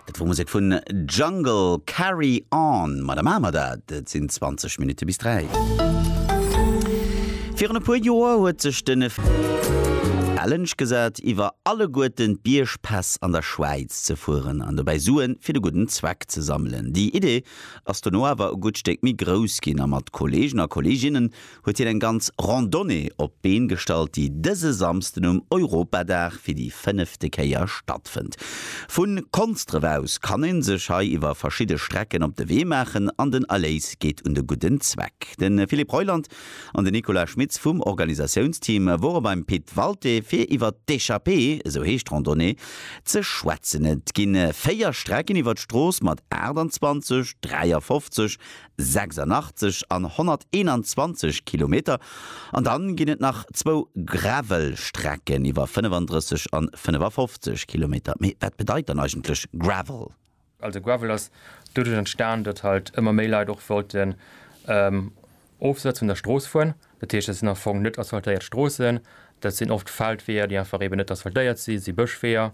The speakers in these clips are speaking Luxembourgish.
Dat wor Musek vun Jungle, Carry On. Ma da maache mer dat. Et sinn 20 Minutte bis 3. Virun e puer Joer huet sech de Challenge gesat, iwwer alleguerten d'Biergpäss an der Schwäiz ze fueren an dobäi Sue fir de gudden Zweck ze sammelen. Déi Idee ass dono awer e gutt Stéck méi grouss ginn a mat Kolleegen a Kolleeginnen huet hien eng ganz Randonnée op d'Been gestallt, déi dëse Samsden um Europadag fir déi fënnefte Kéier stattfënnt. Vu Konsdref aus kann een sech hei iwwer verschidde Strecken op de Wee maachen an den Erléis geet un de gudden Zweck. De Philippe Reuland an den Nicolas Schmitz vum Organisatiounsteam wore beim Pit Walté fir iwwer d'Echappée, esou heescht d'Randonnée, ze schwätzen. Et gi véier Strecken iwwer d'Strooss mat 28, 53, 86 an 121 Kilometer an dann ginn et nach zwou Gravelstrecken iwwer 35 an 55 Kilometer. Mee wat bedeit dann eigentlech Gravel? Also Gravel ass doduerch entstan, datt halt ëmmer méi Leit och wollten ofsëtz un der Strooss fueren. Dat heescht, dat sinn am Fong net asphaltéiert Stroossen, dat sinn oft Feldweeër, déi einfach eeben net asphaltéiert sinn, dat si Bëschweeër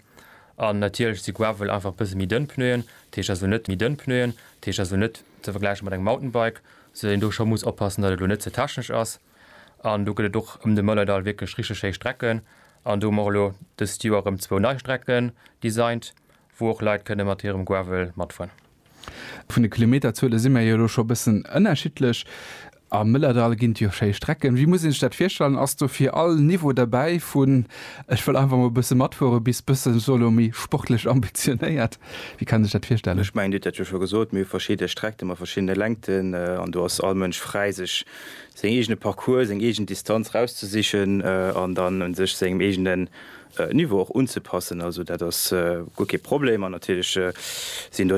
an natierlech si Gravel einfach e bësse méi dënn Pneuen, dat heescht also net méi dënn Pneuen, dat heescht also net ze vergläiche mat engem Mountainbike, soudatt een do scho muss oppassen, datt et elo net ze technesch ass. An do gëtt et och ëm de Mëllerdall wierklech richteg schéi Strecken an do hu mer och elo dëst Joer erëm zwou nei Strecken designt Wou och Leit kënne mat hirem Gravel matfueren. Vun de Kilometerzuele si mir jo elo scho e bëssen ënnerschiddlech. Am Mëllerdall ginn et jo schéi Strecken. Wéi muss ee sech dat virstellen? Ass do fir all Niveau derbäi, vun ech wëll einfach mol e bësse matfuere bis bësse solo méi sportlech ambitionéiert? Wéi kann ee sech dat virstellen? Ech mengen, Dir hutt dat jo scho gesot, mir hu verschidde Streckte mat verschiddene Längten an do ass all Mënsch fräi, sech seng eegene Parcourse, seng eegen Distanz rauszesichen an dann u sech sengem eegene Niveau och unzepassen. Also dat ass guer kee Problem an natierlech sinn do.